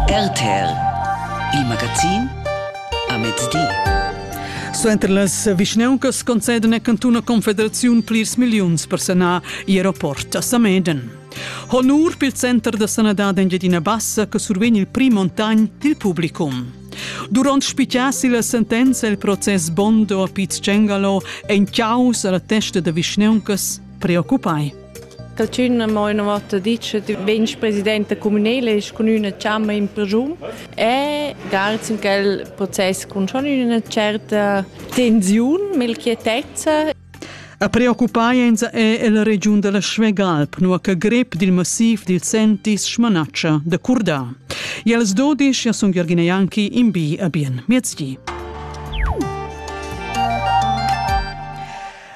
RTL, il magazin a mezdi. Suenter las vischnauncas conceden a cantun a Confederaziun plirs milliuns per sanar il aeroport a Sameden. Honur pel Center da sanadad Engiadina Bassa che survegn il prim montagn dil publicum. Durant spitgiassi la sentenza il process Bondo a Piz Cengalo ein ciaus alla testa da vischnauncas preoccupai. Da tschun mo ina vota ditg che vegn presidenta communale e cun üna chamma in persun e gals in quel process cun schon üna certa tensiun, melchietezza. A preoccupaints è el regiun della Schwegalp, nua che grep dil massiv dil sentis schmanaccia da curda. Jels dodisch ja sun Jörgina Janki in bi a bien miezdi.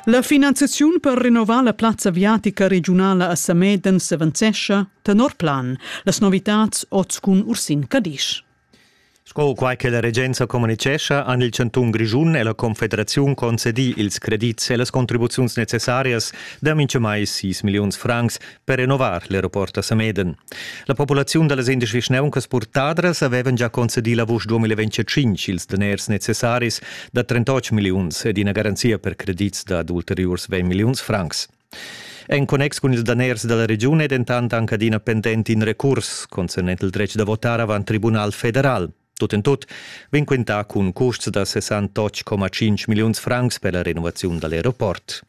La finanziaziun per renovar la plazza aviatica regiunala a Sameden s'avanzescha tenor plan. Las novitads oz cun Ursin Cadisch. Sco quai che la regenza communitgescha, han il chantun Grischun e la Confederaziun concedì ils credits e las contribuziuns necessarias da mintgamai 6 milliuns francs per renovar l'aeroport a Sameden. La populaziun da las indesch vischnauncas purtadras avevan già concedì la vusch 2025 ils daners necessaris da 38 milliuns ed ina garanzia per credits dad ulteriurs 20 milliuns francs. En connex cun ils daners dalla regiun è dentant anche adina pendent in recurs concernent il dretg da votar avant Tribunal federal. Tut en tut vegn quintà cun custs da 68,5 milliuns francs per la renovaziun dall'aeroport.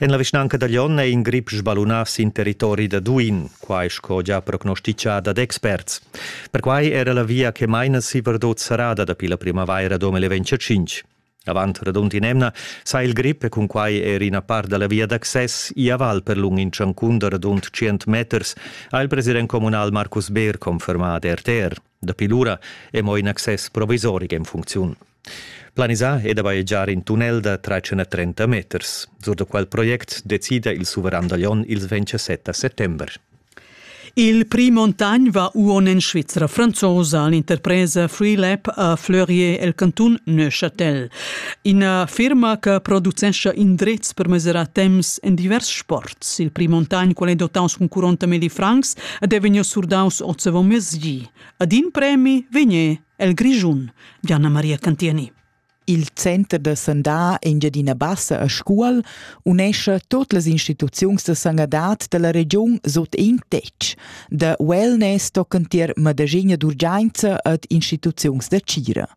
En la vischnanca da Glion è in grip sballunà sin territori da Duin, quai sco gia prognostitgà dad experts. Perquai era la via che maina si Verdot serrada dapi la primavaira 2025. Avant radund in'emna sa il grip e cunquai er ina part da la via d'access i a val per lung in tschancun da radund 100 meters, ha il president communal Markus Beer confermà ad RTR. Dapi lura è mo in access provisoric en funcziun. Planisà è da bajegiar in tunnel da 330 meters. Sur da quel project decida il suveran da Lyon il 27 settember. Il prix Montagnes va uon en Svizra franzosa all'interpresa Freelab a Fleurier el canton Neuchâtel. Ina firma che producescha indrezs per mesurar temps en divers sport. Il pli montagn, quel è dotaus cun 40.000 francs, ed è vegniu surdaus ozevo mezdi. Ad in premi vegné el Grischun, Diana Maria Cantieni. Il center da sandà Engiadina Bassa a Scuol unescha tot las instituziuns da sanadad dalla regiun sut in tetg. Da wellness tocan tier Madagegna d'urgenza ad instituziuns da tgira.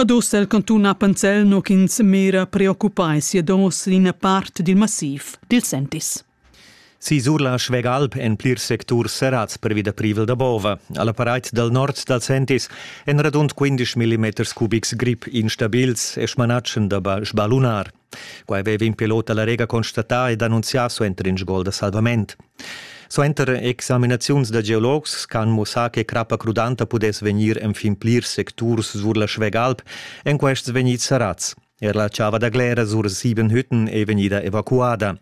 Ad ussa il cantun Appenzell nu ch'ins mira preoccupai sia dos ina part dil massiv dil Sentis. Sisur la Schwegalp en plirs secturs serrats pervi da privel da bova. Alla pareit dal nord dal Sentis en radund 15 mm cubics grip instabils e smanatschen da sbalunar. Quai veva in pilot alla Rega constatà ed annunzià suenter in sgol da salvament. Suenter examinaziuns da geologs han mussà che crappa crudanta pudess vegnir enfin plirs secturs sur la Schwegalp, en quests vegnids sarats. Er la chava da Glera sur sieben Hütten è vegnida evacuada.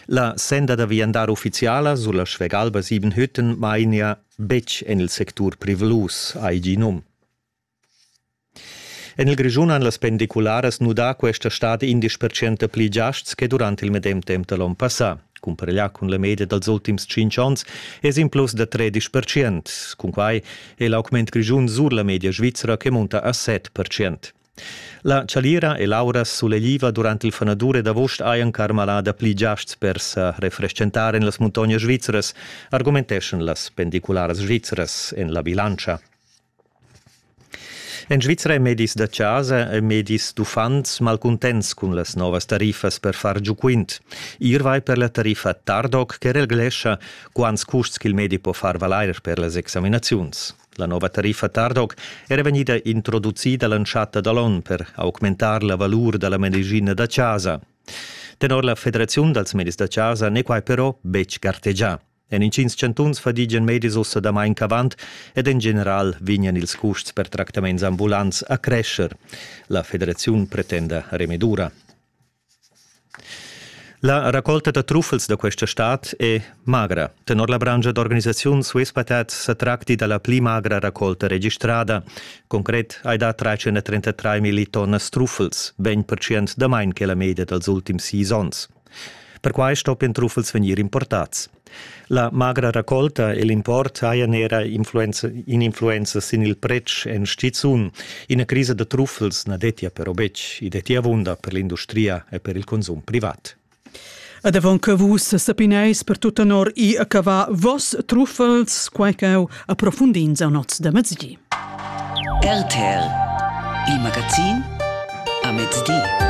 La senda da viandar ufficiala sulla Schwegalba Siebenhütten mainia betg en il sectur privlus, ai num. En il Grischun han las pendicularas nudà questa stad indesch percent pli giasts che durant il medem temp da l'onn passà. Cumpareglià cun la media dals ultims tschintg onns es in plus da 13 percent. Cunquai è l'augment grischun sur la media svizra che munta a 7 percent. La Chalira e Laura sulegliva durant il fanadur ed agost hajan carmalada pli giasts per sa refreschentar en las muntognas svizras, argumenteschan las pendicularas svizras en la bilantscha. En Svizra è medis da chasa e medis d'uffants malcuntents cun las novas tariffas per far giu quint. Ir vai per la tariffa Tardoc che reglescha quants custs ch'il medi po far valair per las examinaziuns. La nova tariffa Tardoc era vegnida introducida l'entschatta da l'onn per augmentar la valur da la medicina da chasa. Tenor la Federaziun dals medis da chasa n'è quai però betg gartegià. En intgins chantuns fadigian medis ussa damain ch'avant ed en general vegnan ils custs per tractaments ambulants a crescher. La federaziun pretenda remedura. La raccolta da truffels da questa stad è magra. Tenor la branscha d'organisaziun Swiss Patat sa tracti da la pli magra raccolta registrada. Concret hai dà 333 milli tonnas truffels, 20% damain che la media dals ultims sis onns. Perquai stoppian truffels vegnir importads. La magra raccolta e l'import hajan era influenza sin il pretsch en stizun. Ina crisa da truffels na dettia però betg. I dettia avunda per l'industria e per il consum privat. Ed avon che vus sapineis per tut tenor i a cavà vos truffels, quai ch'eu approfundins a nots da mezdi. RTL Il magazin a mezdi.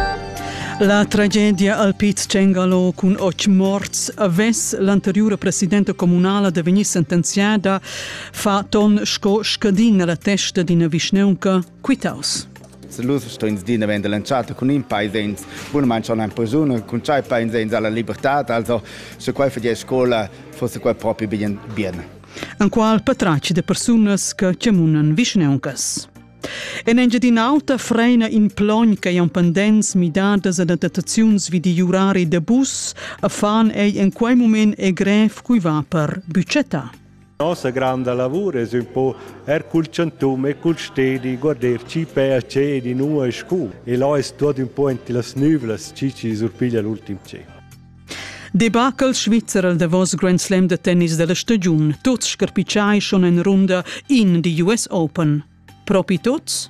La tragedia al Piz Cengalo cun otg morts avess l'anteriura presidenta communala da vegnir sentenziada fa ton sco scadin alla testa d'ina vischneunca quitaus. Se lus stins din vend lanciata cun in paesens, bun manchon ein persune cun tschai paesens alla libertad, also se quai fa die scola, fosse quai propi bien bien. enqual patratg de persunas che chemunan vischneuncas. En Engiadin'Alta freina in plogn che han pendents midadas ad adattaziuns vid i urari de bus, a fan ei en quei moment e grev cui va per buccetta. Nossa granda lavur es un po er cul chantum e cul stedi guarder chi pea ce di nua e scu e là es tuot un po enti las nüvlas chi chi surpiglia l'ultim ce. Debacle svizzer al davos Grand Slam da tennis della stagiun. Tuts scarpitschai schon en runda in di US Open. Propi tuts?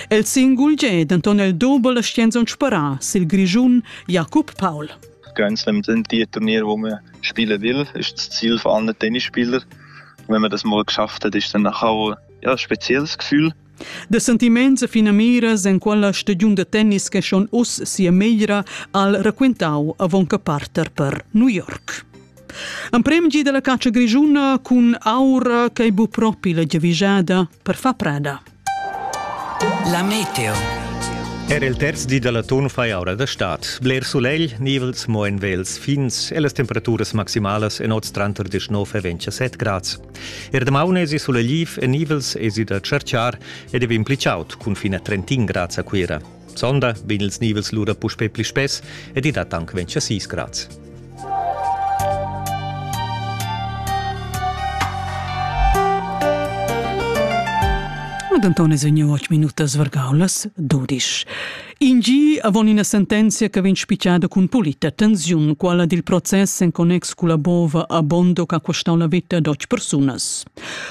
El singul ge denton el doble Stenzon spara sil Grischun Jakob Paul. Grand Slam sind die Turnier, wo man spielen will, ist das Ziel von allen Tennisspielern. Wenn man das mal geschafft hat, ist dann nachher auch ja, ein spezielles Gefühl. De sentiments e finamiras en quella stagiun da tennis che schon uss sia meglra al raquintau avon che parter per New York. Amprem gi della caccia grigiuna cun aura che bu propi la giavigiada per fa prada. La meteo. Era il terz di dalla ton fai aura da stat. Bler sulegl, nivels mo en vels fins e las temperaturas maximalas en oz tranter 19 e 27 grads. Er damaun esi sulegliv e nivels esi da tscherchar ed è impli chaud cun fin a 31 grads a Cuira. Sonda vegn ils nivels lura puspè pli spess ed i dat anc 26 grads. Ad Antone Zögni 8 minutas vargaulas, 12. In gi avon ina sentenzia che vegn spitgada cun pulita tensiun, quella dil process en connex culla bova a Bondo che ha costau la vita a dotg persunas.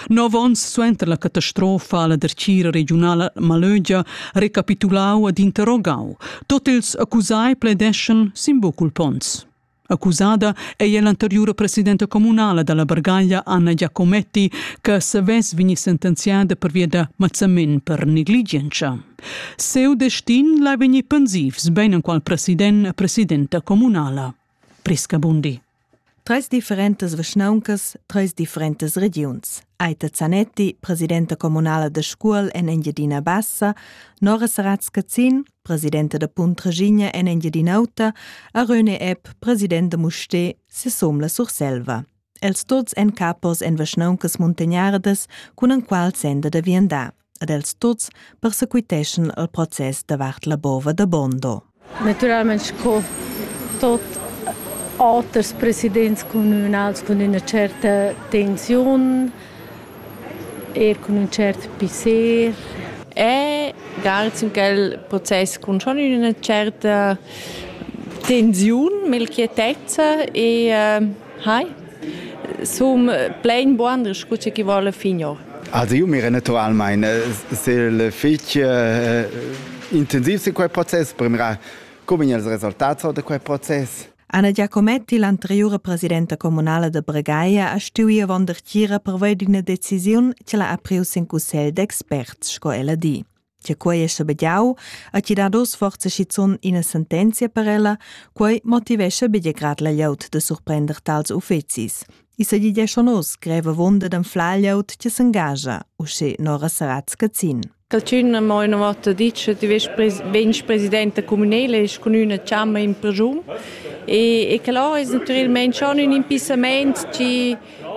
Nov onns suenter la catastrofa alla dercira regionala Malögia recapitulau ed interrogau. Tot ils accusai pledeschan sin bucul pons. Accusada è l'anteriura presidenta communala dalla Bargaglia Anna Giacometti che savess vegnir sentenziada pervia da mazzament per negligenza. Seu destin l'ha vegnir pensivs ben en qual president presidenta communala. Prisca Bundi. Treis differentas vischnauncas, treis differentas regiuns. Aita Zanetti, presidenta communala de Scuol en Engiadina Bassa, Nora Saratska Zin, presidenta da Punt Regigna en Engiadin'Auta, a Röne Epp, president da Musté, sesom la Surselva. Els tots en capos en vaschnauncas muntagnardas cun enqual senda da viandar. Ad els tots persequiteschan al process davart la bova da Bondo. Naturalment sco tot auters presidents communals con una certa tensiun Er cun ün tschert pisser. E gal sin quel process cun schon üna tscherta tensiun, melchietezza e äh, hai. Sum plein buanders cu chi voul fin ora. Also io mi naturalmein sil fich intensiv sin quel process, per mirar come gnir els resultats da quel process. Anna Giacometti, l'anteriura presidenta communala da Bregaia, ha stuì avon dertgira pervei d'ina decisiun che l'ha apriu sin cussegl d'experts, sco ella di. Che quei è schabegiau, ha ti dado sforza schizun ina sentenzia per ella, quei motivescha bia grad la glieud da surprender tals uffecis. I sa di schon oz greva wunde dem Flagliout che s'engagia, usche Nora Sarat Scazin. Calchün ha mo üna vota dit cha ti vest pres vegn presidenta cumünela e cun üna chamma in presun. E, e que là es natüralmaing schon ün impissamaint chi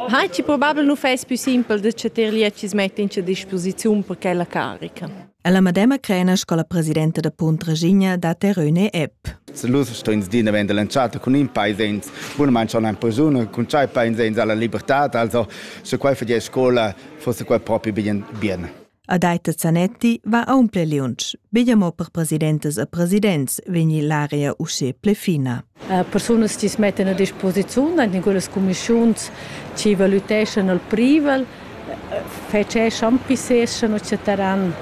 ha chi probabel nu fess pü simpel da cha teir liet chi's metta in cha disposiziun per quella carica. È la medema crena sco la presidenta da Punt Regigna da Teröne Epp. Se lu stins din davent lanciata cun in paesens, bun man schon ein persuna cun tschai paesens alla libertad, also se quai fa die scola, fosse quai propi bien bien. Adaita Zanetti va aunc liunsch, begia mo per presidentas e presidents vegni l'area usche ple fina. Persunas chi smettan a disposiziun in quellas cumischiuns chi valüteschan al privel fetscheschan, pisseschan o chatteran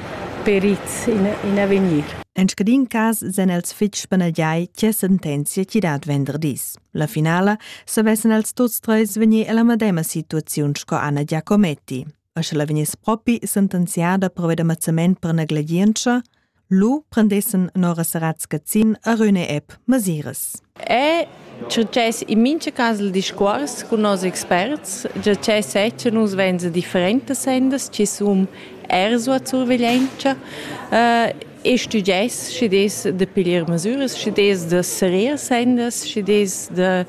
perits in avegnir. En scadin cas sen els fitg spannagliai che sentenzia chi dat venderdis. La finala savessen els tuts treis vegnir alla medema situaziun sco Anna Giacometti. e sche la vegniss propi sentenziada per ved ammazzament per negligientscha, lu prendessen Nora Saratz Gazzin a Rüne App masiras. È succes in mincha cas il discuors cun nos experts, già che sezza nus venza differentas sendas chi sun er sua surveglientscha. Uh, e studais, schi des da piglier masüras, schi des da serir sendas, schi des da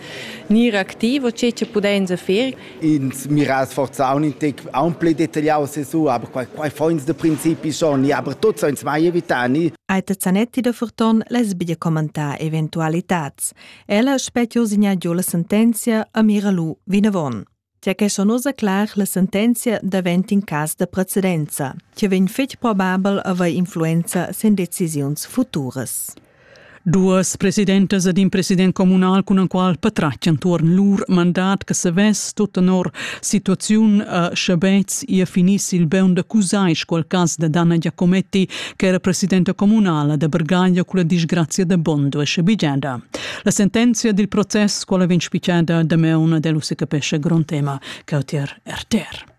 gnir activ o che che pudains fer. Ins mira sforza aun plü detagliau su, aber quai, quai foins da principi schon, aber tuts uns mai evitani. Aita Zanetti da Furton les biglia commentar eventualitats. Ella spetio signa giò la sentenzia a mira lu vinavon. Tge che son ussa clar, la sentenzia davent in cas da precedenza, che vegn fitg probabel a avair influenza sin decisiuns futuras. Duas presidentas ed in president communal cun en qual patratg entuorn lur mandat che savess tut tenor situaziun a Schabetz ia finis il beun da cusai scual cas da Dana Giacometti che era presidenta communala da Bergaglia cu la disgrazia da Bondo e Schabigiada. La sentenzia dil process quala vegn spicciada damaun dell usse capescha grond tema cautier RTR.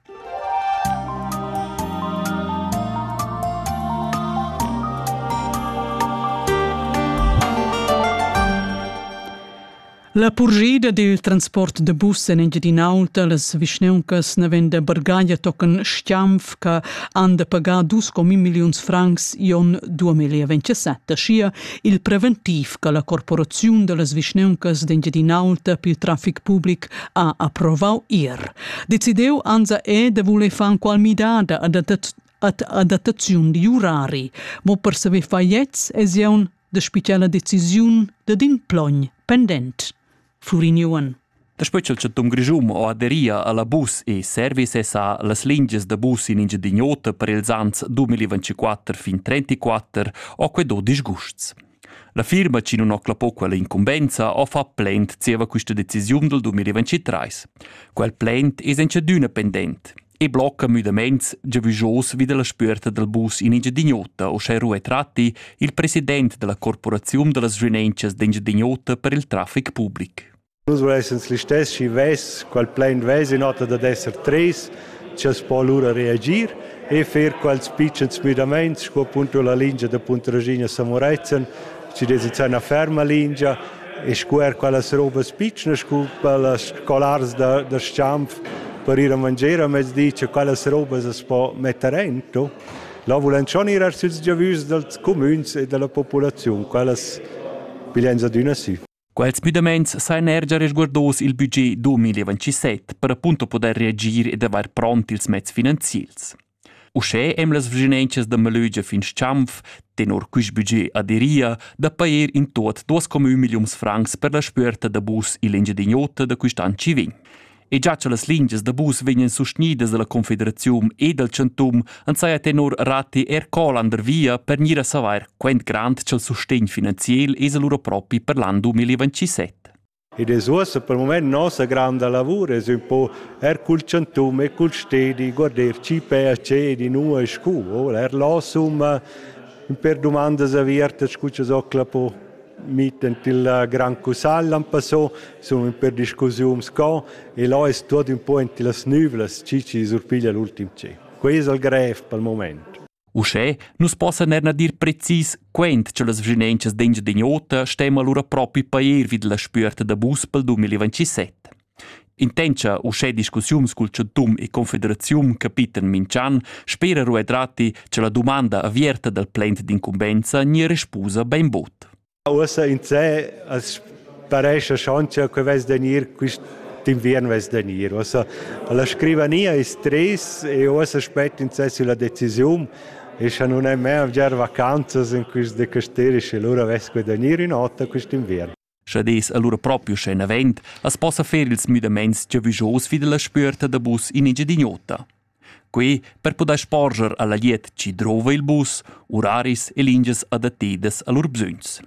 La purgida dil transport de bus en Engiadinaulta las vischneuncas naven de Bargaglia tocan Stiamf che han de pagar 2,5 milliuns francs ion 2027 schia il preventiv che la corporaziun da las vischneuncas d'Engiadin'Alta pel trafic public ha approvau ir. Decideu anza è de voler far qual midada ad adattaziun di urari, mo per saver far jetzt es jeun de speciala decisiun de din plogn pendent. Flurignuon. Daspö cha'l chattun grischun ho aderia alla bus e service sa las lingias da bus in Engiadin'Ota per ils ans 2024 fin 34 ho que do disgusts. La firma chi nun ho clappo quella incumbenza ho fa plaint zieva quista decisiun del 2023. Quel plaint es in chadüna pendent. e blocca müdaments giavüschos vi dalla spüerta dal bus in Engiadin'Ota, uschè Rue Tratti, il president della corporaziun da las Renenchas d'Engiadin'Ota per il traffic public. Nus vesens listess schi vess, qual plain vess in ota dad esser tres, ci as po allura reagir e fer quals pitschens müdaments, sco appunto la lingia da Puntraschigna a Samuretzen, ci desiz una ferma lingia, e scuer quellas robas pitschnas cu quellas scolars da, da Schanf per ir a mangier a mezdi, che quellas robas as po metter ento. Là vulan schon ir er süls giavüschs dals cumüns e dalla populaziun, quellas piglian adüna sü. Quels müdamaints sajan er già resguardos il budget 2027 per appunto podair reagir ed avair pront ils mezs finanziels. Uschè em las vischinanzas da Malögia fin Schamf, tenor quist budget aderia da pajer in tuot duos comün milliuns francs per la spüerta da bus ill'Engiadin'Ota da quist'an chi vegn. E già cha las lingias da bus vegnan sustgnidas dalla Confederaziun e dal Chantum ans saja tenor Ratti er Colander via per gnir a savair quant grand cha'l sustegn finanziel es lura propi per l'an 2027. Ed es uossa pel mumaint nossa granda lavur es ün po eir cul chantun e cul stedi guarder chi pea cer inua e scu, voul eir là summa ün per dumandas avertas cu cha Zocla po mitten tilla gran cussaglia am passò, sun ün per discussiun sco e là es tuot ün po ün tillas nüvlas chi chi surpiglia l'ultim tschep. Quai es il grev pel mumaint. Uschè nus possan er dir precis quent cha las vschinenchas d'Engiadin'Ota stema lura propi pair vid la spüerta da bus pel 2027. Intendscha uschè discussiuns cul chantun e confederaziun capitan minch'an, spera Ruedrati cha la dumanda avierta dal plent d'incumbenza gnir respusa bainbod. Ussa insè as parescha schon cha que vess da gnir quist inviern vess da gnir. Uossa la scrivania es trist e uossa spet insè sülla decisiun e scha nun è mê avgiar vacanzas in quist de Casteris e lura vess que da gnir ün'ota quist'inviern. Scha dess allura propriu sche n'avend, as possa fer ils müdamaints giavüschos vi dalla spüerta da bus in Engiadin'Ota. Quei per puder sporger alla glieud chi drova il bus, uraris e lingias adattedas a lur bsögns.